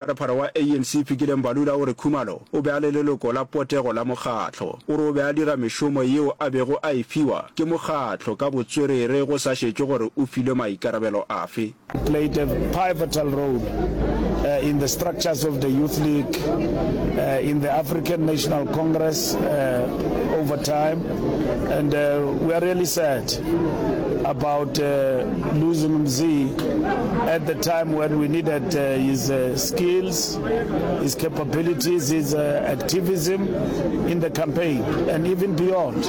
Pharaphara wa ANC Fikile Mbalula o re Khumalo o be a le leloko la potego la mokgatlo. O re o be a dira mešomo yeo a bego a e fiwa ke mokgatlo ka botswerere go sa šetšwe gore o filwe maikarabelo afe. played a pivotal role in the structures of the Youth League, in the African National Congress over time and we are really sad about losing Mzee at the time when we needed uh, his uh, skills, his capabilities, his uh, activism in the campaign and even beyond.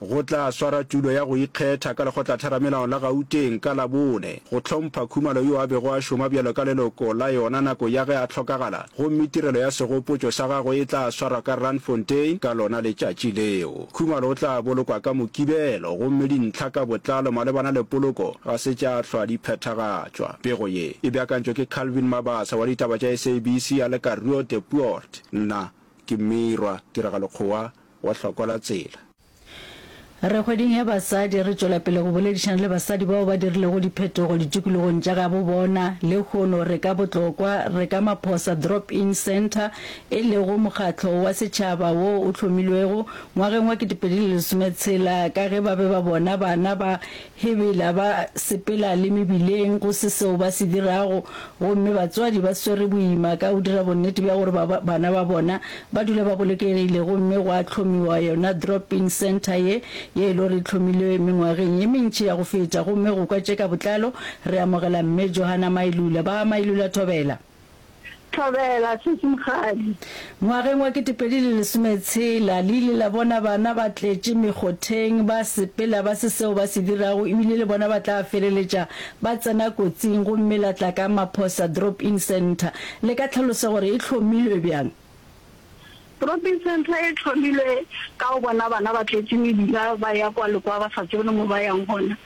go tla swara tulo ya go ikgetha ka lekgotlatheramelao la gauteng ka labone go hlompha khumalo yo a bego a šoma bjalo ka leloko la yona nako ya ge a hlokagala Gomme tirelo ya segopotšo sa gagwe e tla swarwa ka Randfontein ka lona letšatši leo. Khumalo o tla bolokwa ka Mokibelo, gomme dintlha ka botlalo malebana le poloko ga se tša hlwa di phethagatšwa. Pego ye e beakantšwe ke Calvin Mabasa wa ditaba tša SABC a le ka Rue de Poort. Nna ke Mmirwa Tiragalokgowa wa Hlokwa la Tsela. Re kgweding ya basadi, re tšwela pele go boledišana le basadi bao ba dirilego diphetogo ditikologong tša gabo bona. Lehono re ka botlokwa, re ka Maphosa Drop-In Centre, e lego mokgatlo wa setšhaba wo o hlomilwego ngwageng wa 2016 ka ge ba be ba bona bana ba He bela ba sepela le mebileng go se seo ba se dirago, gomme batswadi ba swere boima ka go dira bonnete bja gore ba bana ba bona ba dula ba bolokegile. Gomme gwa hlomiwa yona drop-in centre ye, ye e lo re e hlomilwe mengwageng ye mentši ya go feta. Gomme go kwa tše ka botlalo, re amogela Mme Johanna Mailula. Ba Mailula, thobela. Thobela, Sesi Mokgadi. Ngwageng wa ketepedi le lesometshela, le ile la bona bana ba tletše mekgotheng, ba sepela ba se seo ba se dirago ebile le bona ba tla feleletša ba tsena kotsing gomme la tla ka Maphosa Drop-In Centre. Le ka tlhalosa gore e hlomilwe bjang? Trophy Centre e hlomilwe ka go bona bana ba tletše mebila ba ya kwa le kwa ba sa tsebe le mo ba yang gona.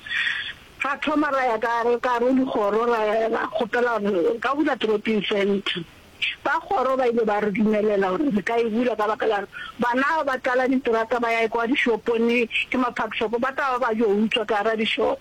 Ra thoma ra ya ka ka gare go dikgoro ra ra kgopela gore re ka bula Trophy Centre. Ba kgoro ba ile ba re dumelela gore re ka e bula ka baka la bana ba tlala diterata ba ya kwa dishopong ke ma-park shop ba tla ba ba yo utswa ka gare ga dishop.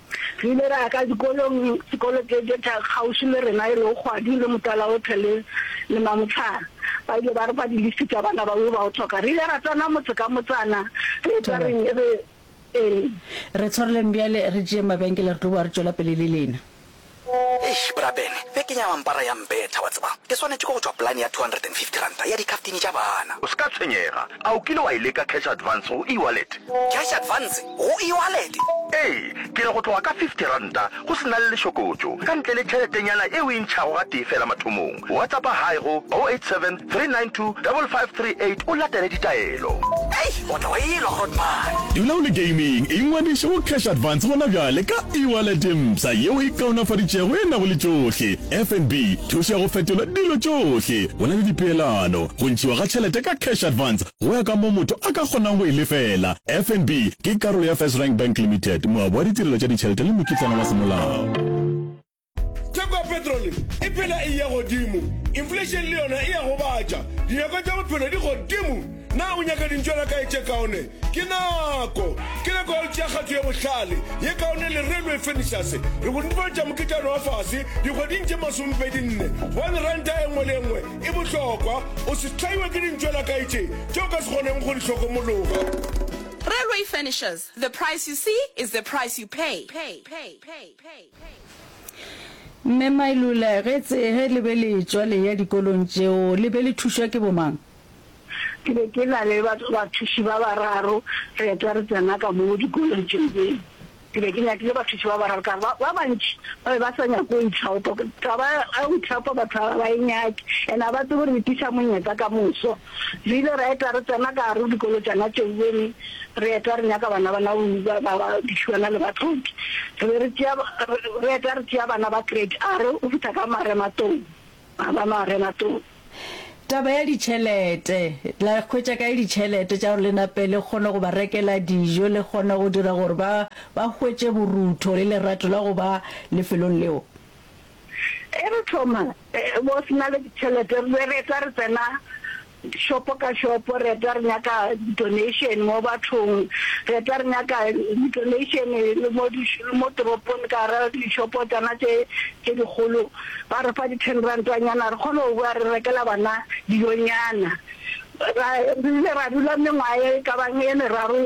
Re ile ra ya ka dikolong, dikolo tše tše tša kgauswi le rena e lego Kgwadi le Motalaothe le le Mamohlare. Ba ile ba re fa diliste tša bana ba yo ba o hloka. Re ile ra tsena motse ka motsana re etša re Thobela. re, Ee. Re tshwareleng bjale, re tšeeng mabenkele, re tlo boa re tšwela pele le lena. Eish bra Ben, beke nya mampara ya mbetha wa tseba. Ke swanetše ke go tšwa polane ya R250 ya dikhaftini tša bana. O se ka tshwenyega. A o kile wa e leka cash advance go e-wallet? Cash advance go e-wallet? Ee, ke re go tloga ka R50 go se na le lešokotšo, ka ntle le tšheletenyana e o e ntšhago gatee feela mathomong. WhatsAppa hi go 087 392 5538 o latele ditaelo. Hei, o tla wa elwa Grootman. Dula o le gaming, ingwadiše go Cash Advance gona bjale ka e-wallet mpsha yeo e kaonafaditšego e nago le tšohle, FNB, thušo ya go fetola dilo tšohle, go na le dipeelano, go ntšhiwa ga tšhelete ka Cash Advance go ya ka moo motho a ka kgonang go e lefela. FNB ke karolo ya First Rank Bank Limited, moabi wa ditirelo tša ditšhelete le mokitlana wa semolao. theko ya petrole e phela e ya godimo inflation le yona e ya gobatša dinyako tša bophelo di godimo na o nyaka dintšwana kae tše kaone ke nako ke nako ya tšea kgatho ye bohlale ye kaone le railway furnitures re go netefatša moketšano wa fase dikgweding tše masomepedi nne gobane ranta e nngwe le nngwe e bohlokwa o se tlhaiwe ke dintšwana kae tše tše o ka se kgoneng go di hlokomologa Railway furnitures, the price you see is the price you pay. pay, pay, pay, pay. Mme Mailula, ge tse, ge le be le etšwa le eya dikolong tšeo, le be le thušwa ke bomang? Ke be ke na le batho, bathuši ba bararo, re etwa re tsena ka moo dikolong tšeo. Be, ke be ke nyakile bathuši ba bararo, ka ba, ba bantši ba be ba sa nyake go itlhaopa. Taba ya go itlhaopa batho ga ba e nyake, and ga ba tsebe gore e tliša monyetla ka moso. Re ile ra eta re tsena ka gare go dikolo tšana tšeo be re re eta re nyaka bana bana go ba ba ba dišuana le batlhoki. Re be re tšea re eta re tšea bana ba grade a re go fihla ka marematong ba ba marematong. Taba ya ditšhelete, la hwetša kae ditšhelete tša gore le nape le kgone go ba rekela dijo le kgone go dira gore ba ba hwetše borutho le lerato la go ba lefelong leo? Ge re thoma go se na le ditšhelete, re be re etwa re tsena šopo ka šopo, re etwa re nyaka di-donation mo bathong, re etwa re nyaka di-donation le mo di le mo toropong ka gara dixopo tsona tše tše dikgolo, ba re fa di-ten rantanyana re kgone go bowa re rekela bana dijonyana. Ra re ile ra dula mengwaga e ka bang e meraro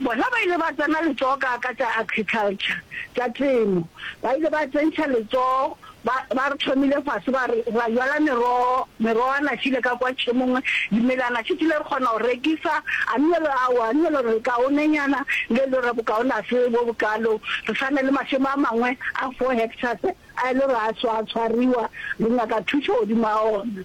Bona ba ile ba tsena letsogo ka ka tša agriculture, tša temo. Ba ile ba tsentšha letsogo, ba, ba re thomile fase, ba re ra jala merogo, merogo a našile ka kwa tšhemong, dimela a našitile, re kgona go rekisa, a nne le ao, a nne le re kaonenyana, le le re bokaone a se bo bokalo, re sa ne le mašemo a mangwe a four hectares a e le re a swa, a tshwariwa, re nyaka thušo godimo ga ona.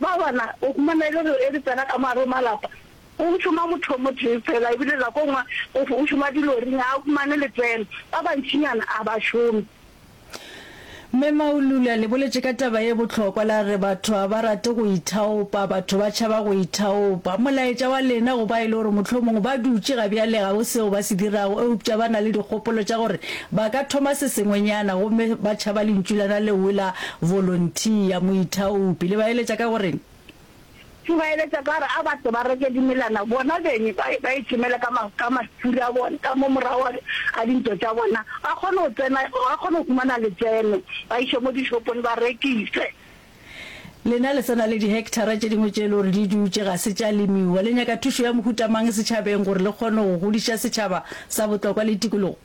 Ba bona, o humana e le gore e re tsena ka mogare go malapa, go šoma mothomotee fela, ebile nako nngwe go go šoma dilori, ga a humane letseno. Ba bantšinyana a ba šome. Mme Maulula le boletše ka taba ye bohlokwa la re batho ga ba rate go ithaopa, batho ba tšhaba go ithaopa. Molaetša wa lena go ba e le gore mohlomongwe ba dutše ga bjale ga go seo ba se dirago eupša ba na le dikgopolo tša gore Ba ka thoma se sengwenyana gomme ba tšhaba lentšulana leowi la volontiya, moithaopi. Le ba eletša ka go reng? Ke ba eletša ka gore a ba tle ba reke dimelana bona beng, ba, ba ichomele ka ma, ka masturi a bona, ka mo morago a, a dintlo tša bona, ba kgone go tsena, ba kgone go humana letseno, ba iše mo dishopong ba rekise. Lena le sa na le dihekthara tše dingwe tše e le gore di dutše ga se tša lemiwa, le nyaka thušo ya mohuta mang setšhabeng gore le kgone go godiša setšhaba sa botlokwa le tikologo?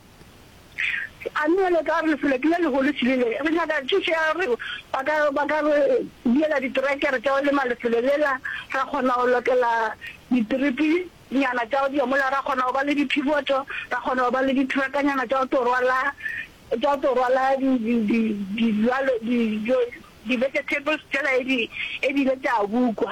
A mme le ka re lefeleti le legolo se rile, re nyaka thušo ya gore ba ka ba ka re diela diterekere tša go lema lefelo lela, ra kgona go lokela ditiripi nyana tša go diya mola, ra kgona go ba le diphiboto, ra kgona go ba le ditrakanyana tša go tlo rwala tša go tlo rwala di di di dijalo di di vegetables tšela e di e di ile tša bukwa.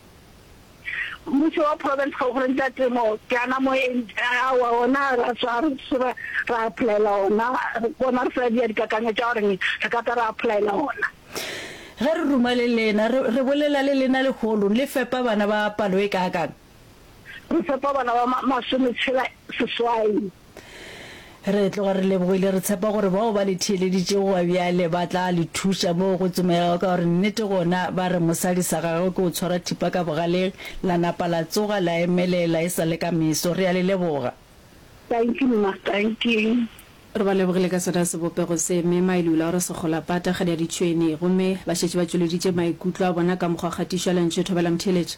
Mmušo wa Province ga o gore nka temo ke ana moeng aowa ona ra tswa re seba ra applyela ona bona re sa dia dikakanyo tša gore re ka tla ra applyela ona. Ge re ruma le lena re re bolela le lena leholong le fepa bana ba palo e kaakang? Re fepa bana ba masome tshela seswai. Re tloga re lebogile, re tshepa gore bao ba le theeleditšego gwa bjale ba tla le thuša moo go tsomegago, ka gore nnete gona ba re mosadi sa gagwe ke o tshwara thipa ka bogaleng, la napa la tsoga la emelela e sa le ka meso. Re a le leboga. Thank you mma, thank you. Re ba lebogile ka sona sebopego se, Mme Mailula o re Sekgolapata, kgadi ya ditšhwene. Gomme ba šetše ba tšweleditše maikutlo a bona ka mokgwa kgatišo ya lentšu e thobela motheeletša.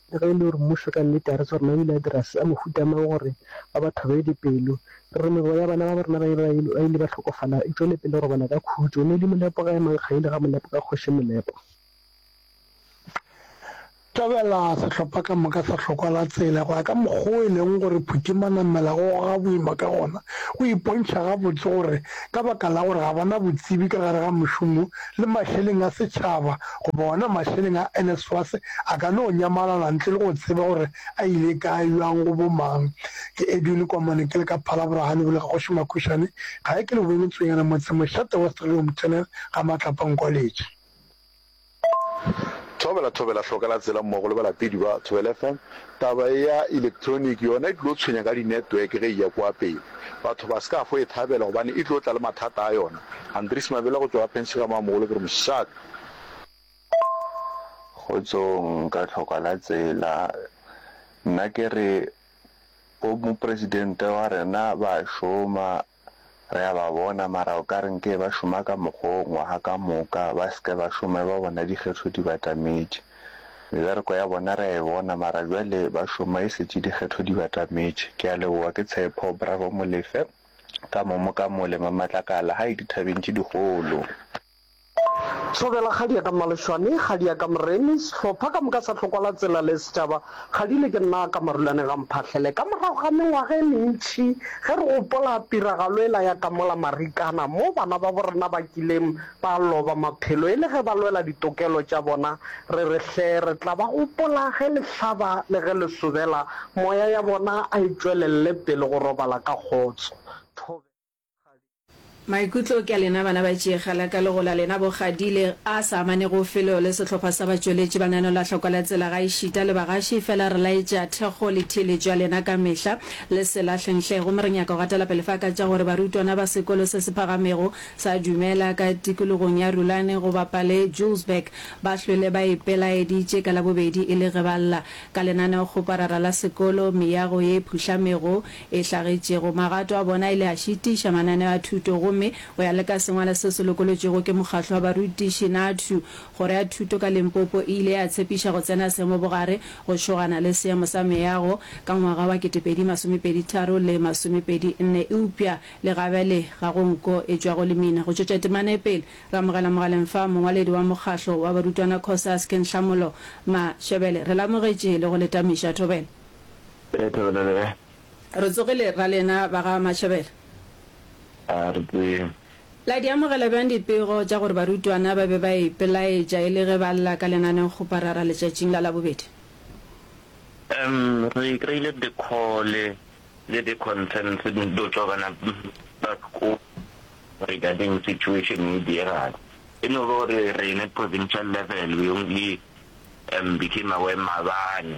Le ge e le gore mmušo ka nnete ga re tsebe gore na o ile a dira se a mohuta mang gore ba ba thobe dipelo, re re meboya ya bana ba bo rena ba ba ile ba hlokofala e tšwele pele go robala ka khutšo. Moedi Molepo ga e mankgaile ga Molepo ka Kgoši Molepo. Thabela sehlopha ka moka sa hlokwa la tsela go ya ka mokgwa o e leng gore Phuti Manamela o goga boima ka gona, o ipontšha gabotse gore ka baka la gore ga ba na botsebi ka gare ga mošomo le mahleleng a setšhaba goba ona mahleleng a NSFAS a ka no nyamalala ntle le go tseba gore a ile kae, bjang, go bo mang. Ke Edwin Komane ke le ka Phalabora ga lebole ga Kgoši Makhušane gae ke le boemetsonyana motse mošate wa Strelom Channel ga Matlapa Nkwaletši. Thobela, Thobela, Hlokela tsela mmogo le balapedi ba Thobela FM. Taba e ya electronic yona e tlo tshwenya ka di-network ge e ya kwa pele. Batho ba ska fo e thabela gobane e tlo tla le mathata a yona. Andries Mabela go tšwa Athens ga Mamogolo ke re mošate. Kgotsong ka tlhoka la tsela nna kere bo mopresidente wa rena ba šoma Re a ba bona, mara o ka re nke ba šoma ka mokgo ngwaga ka moka, ba se ke ba šoma e ba bona dikgetho di batametše. Mebereko ya bona re a e bona, mara bjale ba šoma e šetše dikgetho di batametše. Ke a leboga, ke Tshepo. Bravo Molefe, ka mo mo ka mo lema matlakala, hai dithabeng tše dikgolo. Thobela kgadi ya ka Mmaleshwane, kgadi ya ka Moremi, sehlopha ka moka sa Hlokwala Tsela le setšaba, kgadi le ke nna ka Marulane ga Mphahlele. Ka morago ga mengwaga e mentši ge re gopola tiragalo ela ya ka mola Marikana mo bana babo rena ba kileng ba loba maphelo e le ge ba lwela ditokelo tša bona, re re hle re tla ba gopola ge le hlaba le ge le sobela, moya ya bona a e tšwelelle pele go robala ka kgotso. Thobela. Maikutlo ke a lena bana ba Tšeegala ka legola lena bo Gadile a sa amanego felo le sehlopha sa batšweletši ba nano la hloko la tsela gaešita le bagaši fela re laetša thekgo le theeletšo ya lena ka mehla le se lahle nhle gomme re nyaka go gatela pele fa ka tša gore barutwana ba sekolo se se phagamego sa Dumela ka tikologong ya Rulane go Bapale Julesburg ba hlwele ba ipelaeditše ka labobedi e le ge ba lla ka lenaneokgoparara la sekolo meago ye phuhlamego e hlagetšego. Magato a bona a ile a šitiša mananeo a thuto gomme, go ya le ka sengwalo seo se lokolotšwego ke Mokgatlo wa Barutiši, NAADTU, Kgoro ya Thuto ka Limpopo e ile ya tshepiša go tsena seemo bogare go šogana le seemo sa meago ka ngwaga wa ketepedi masome pedi tharo le masome pedi nne eupša le gabele ga go nko e tšwago lemina go tšwetša temana e pele. Re amogela mogaleng fa mongwaledi wa Mokgatlo wa Barutwana Cosas, Kenhlamolo Mashebele. Re le amogetše le go le tamiša thobela. Ee, Thobela le kae? Re tsogile ra lena ba ga Mashebela. A re tsee. La di amogela bjang dipego tša gore barutwana ba be ba ipelaetša e le ge ba lla ka lenaneo-kgoparara letšatšing la Labobedi? Um, re kry-ile dikhole le di-concerns di tšwa bana ba sekolo regarding situation e diegale. E no ba gore rena provincial level we only um became aware maabane.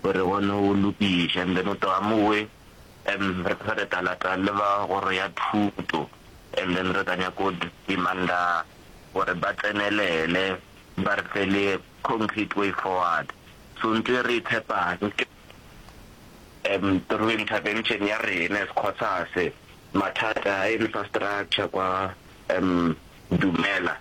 Gore re kgone go lokiša and then o tlo a mo we and re tlo re tla lata le ba kgoro ya thuto and then re tla nyaka go demanda gore ba tsenelele ba re fe le concrete way forward. So ntho re e tshepang ke um through intervention ya rena as COSAS mathata a infrastructure kwa um Dumela.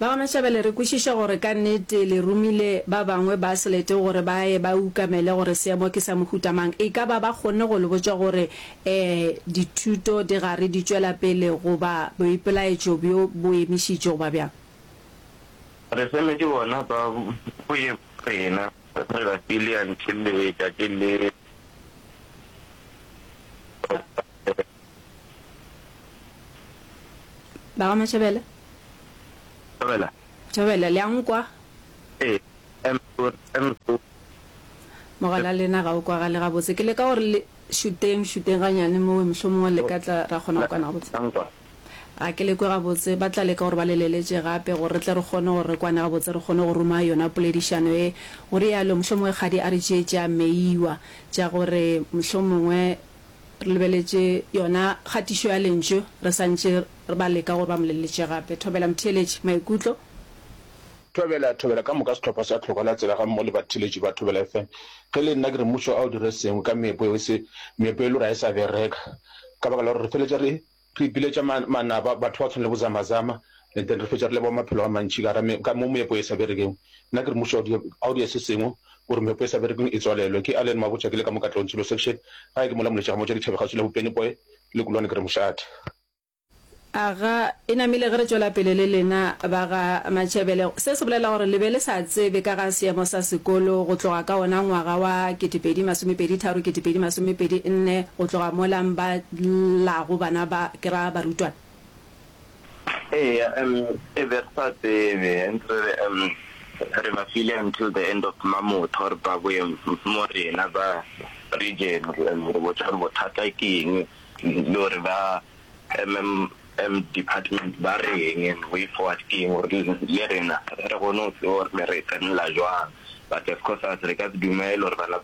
Ba Gamashabele, re kwešiša gore ka nnete le romile ba bangwe ba Selete gore ba ye ba ukamele gore seemo ke sa mohuta mang. E ka ba ba kgonne go le botša gore ee, dithuto di gare di tšwela pele goba boipelaetšo bjo bo emišitšwe goba bjang? Re semetše bona ba boyeng bja rena, re ba file until letšatši le. Ba ga Matšhabela? Tšhabela. Tšhabela, le a nkwa? Ee, eme o, eme o. Mogala lena ga o kwagale gabotse. Ke leka gore le šuteng, šuteng ganyane mowe, mohlomongwe le ka tla ra kgona go kwana gabotse. La nkwa? Ga ke le kwe gabotse. Ba tla leka gore ba le leletše gape gore re tle re kgone gore re kwane gabotse, re kgone go ruma yona poledišano ye, o realo. Mohlomongwe kgadi a re tšee tša Meyiwa, tša gore mohlomongwe Re lebeletše yona kgatišo ya Lentšu re sa ntše re ba leka gore ba mo leletše gape. Thobela motheeletši. Maikutlo? Thobela, thobela ka moka sehlopha sa Tlhoko la Tsela gammogo le batheeletši ba Thobela FM. Ge e le nna, ke re Mmušo a o dire sengwe ka meepo yeo, se, meepo e le gore ga e sa bereka ka baka la gore re feletša re, Re ipiletša manaba, batho ba go tshwana le bo Zama-Zama, and then re fetša re leboga maphelo a mantši ka gara ka mo meepo e sa berekeng. Nna ke re mmušo a o dire se sengwe gore meepo e sa berekeng e tswalelwe. Ke Allen Mabotja, ke le ka mo Katlehong Tshilo Section, gae ke mola Moletša ga Motša Dithabe kgauswi le bo Pennyboy le Kulwane ke re mošate. Aga e namile ge re tšwela pele le lena ba ga Matšebele. Se se bolela gore le be le sa tsebe ka ga seemo sa sekolo go tloga ka wona ngwaga wa 2023-2024 go tloga mola mba la go bana ba, ke ra barutwana. Eya, em, e be re sa tsebe, ntse re re, em, re ba file until the end of Mamotho gore ba boye mo rena ba region, em, re botša gore bothata ke eng le gore ba, em, em, em, department ba reng and way forward ke eng gore le rena re kgone go tseba gore re tsenela jwang, but as Cosas re ka se dumele gore bana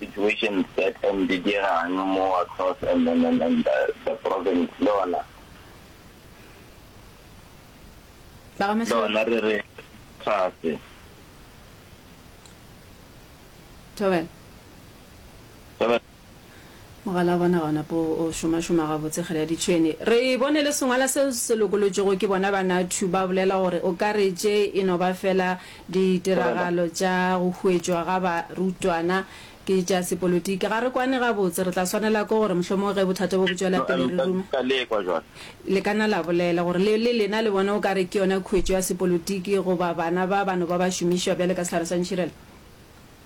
Situation that and di dirang mo across and and and and the, the province le ona ba ga le mahlong ona re re tlase thobela Thobela. Mogala wa bona ga o na po o šomašoma gabotse kgele ya ditšhwene. Re bone le sengwala seo se lokolotšwego ke bona Banatu, ba bolela gore o ka re tše e no ba fela ditiragalo tša go huetšwa ga barutwana ke tša sepolotiki. Ga re kwane gabotse. Re tla swanela ke gore mohlomongwe ge bothata bo bo tšwela pele re rume. Le ka na la bolela gore le, le lena le bone o ka re ke yona khuetšo ya sepolotiki goba bana ba ba no ba ba šomišwa bjale ka sehlare sa ntšhirela?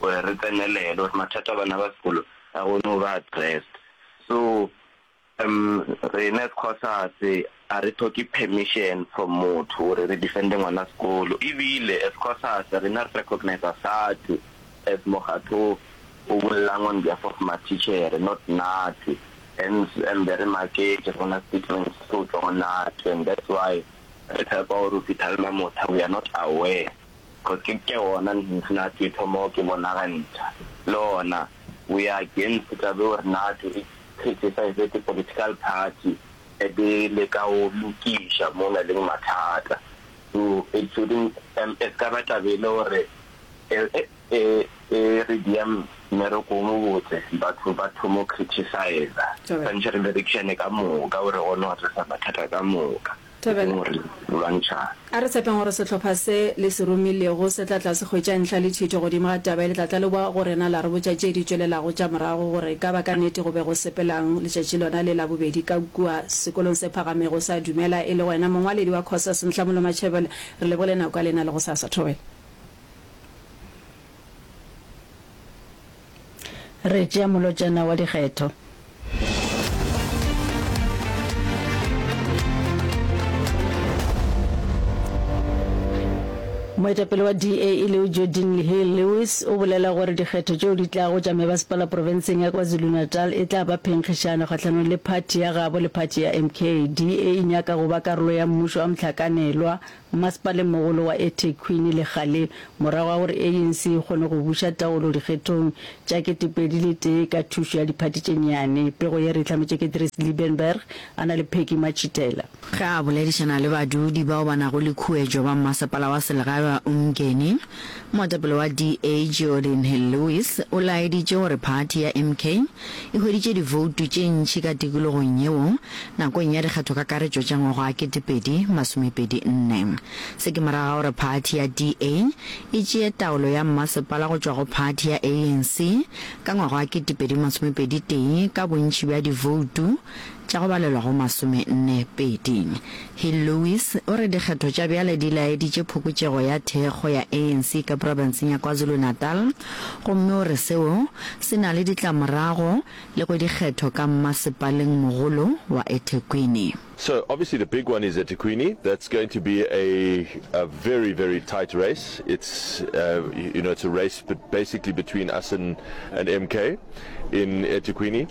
gore re tsenelele gore mathata a bana ba sekolo a kgone go ba addressed. So um rena as Cosas a re thoke permission from motho gore re defende ngwana sekolo ebile as Cosas rena re recognisa SADTU as mokgatho o bollang on behalf of mathichere not NATU hence um be re maketše re bona statement se tlo tšwa go NATU and that's why re tshepa gore o phithalma motha we are not aware. Go se ke gona Nnati tho mo ke bonagantšha le gona we are against taba eo Nnati e criticize the political party e be e leka go lokiša mo na leng mathata so it shouldn't um e se ka ba taba e le gore e e e re dia mmereko o mobotse batho ba thomo criticize Century Direction ka moka gore gone go tlisa mathata ka moka. Thobela. Ke gore lwantšhang. A re tshepeng gore sehlopha se le se romilego se tla tla se hwetša ntlha le thito godimo ga taba ye le tla tla le boa go rena la re botša tše di tšwelelago tša morago gore ka ba ka nnete go be go sepelang letšatši lona le la bobedi ka kua sekolong se phagamego sa Dumela e le wena mongwaledi wa Cosas Nhlamulo Matšhebele. Re lebogile nako ya lena le gosasa. Thobela. Re tšea molotšana wa dikgetho. Moetapele wa DA e leo Joe Dinglehale Lewis o bolela gore dikgetho tšeo di tlago tša mebasepala profenseng ya KwaZulu-Natal e tla ba phenkgišano kgahlanong le phathi ya gabo le phathi ya MK. DA e nyaka go ba karolo ya mmušo wa mohlakanelwa Mmasepalengmogolo wa eThekwini legale morago ga gore ANC e kgone go buša taolo dikgethong tša ketepedi le tee ka thušo ya diphathi tše nnyane. Pego ye re e hlametše ke Dries Liebenberg a na le Peggy Matšhitela. Ge a boledišana le badudi bao ba nago le khuetšo ba mmasepala wa selegae wa Umgeni, Moetapele wa DA Geordin Hill-Lewis o laeditše gore phathi ya MK e hweditše divoutu tše ntši ka tikologong yeo nakong ya dikgathokakaretšo tša ngwaga wa kete pedi masome pedi nne. Se ke morago ga gore phathi ya DA e tšee taolo ya mmasepala go tšwa go phathi ya ANC ka ngwaga wa kete pedi masome pedi tee ka bontši bja divoutu tša go balelwa go masomenne pedi. Hill Lewis o re dikgetho tša bjale di laeditše phokotšego ya thekgo ya ANC ka profenseng ya KwaZulu-Natal gomme o re seo se na le ditlamorago le go dikgetho ka mmasepaleng mogolo wa eThekwini. So obviously the big one is eThekwini, that's going to be a a very very tight race, it's uh you know it's a race but basically between us and and MK in eThekwini.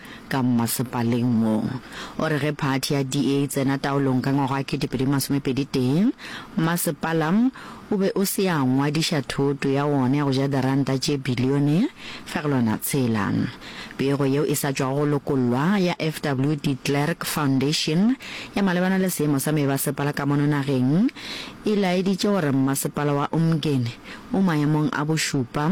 ka mmasepaleng wo. O re ge phathi ya DA e tsena taolong ka ngwaga wa kete-pedi masomepedi-tee, mmasepala o be o se ya ngwadiša thoto ya wona ya go ja diranta tše bilione fegelwana tshela. Pego yeo e sa tšwago go lokollwa ya FW de Klerk Foundation ya malebana le seemo sa meebasepala ka mono nageng e laeditše gore mmasepala wa Umgeni o maemong a bošupa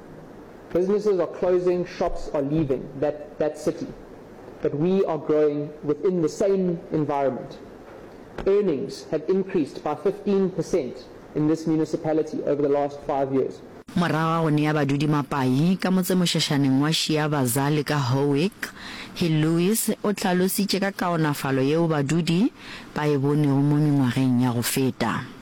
Businesses are closing, shops are leaving that, that city. But we are growing within the same environment. Earnings have increased by 15% in this municipality over the last five years. Morago ga go nea badudi mapai ka motsemošašaneng wa Shiabaza le ka Howick Hill Lewis o hlalositše ka kaonafalo yeo badudi ba e bonego mo mengwageng ya go feta.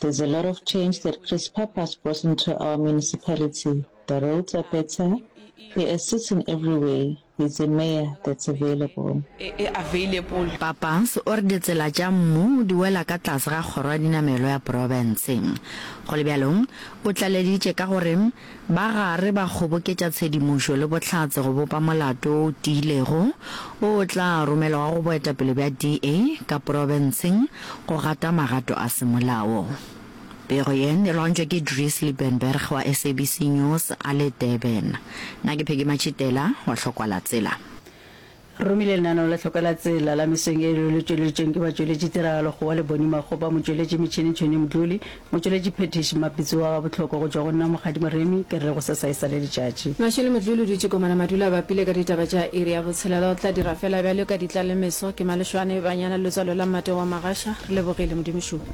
There's a lot of change that Chris Pappas brought into our municipality, the roads are better, he assists in every way, he's a mayor that's available. Pappas o re ditsela tša mmu di wela ka tlase ga kgoro ya dinamelo ya profense. Go le bjalo, o tlaleditše ka gore ba gare ba kgoboketša tshedimošo le bohlatse go bopa molato o tiilego o o tla romelwago go boetapele bja DA ka porofenseng go gata magato a semolao. Pego ye e loantšwa ke Dries Liebenberg wa SABC News a le Durban. Nna ke Peggy Matšhitela wa Hlokwalatsela. Re romile lenaneo la Tlhoko la Tsela la Mesong e leo le tšweleditšweng ke batšweletši tiragalo go wa Leboni Makgopa, motšweletši metšhini Tšhoni Mdluli, motšweletši phethiši Mmapitsi wa Gabotlhoko go tšwa go nna Mokgadi Moremi, ke re go sa sa e sa le letšatši. Mna Tšhoni Mdluli o dutše Komana Madula a bapile ka ditaba tša iri ya botshelela o tla dira fela bjalo ka ditla le meso ke Malešwane Banyana letswalo la Mmate wa Magasha re lebogile Modimo šupa.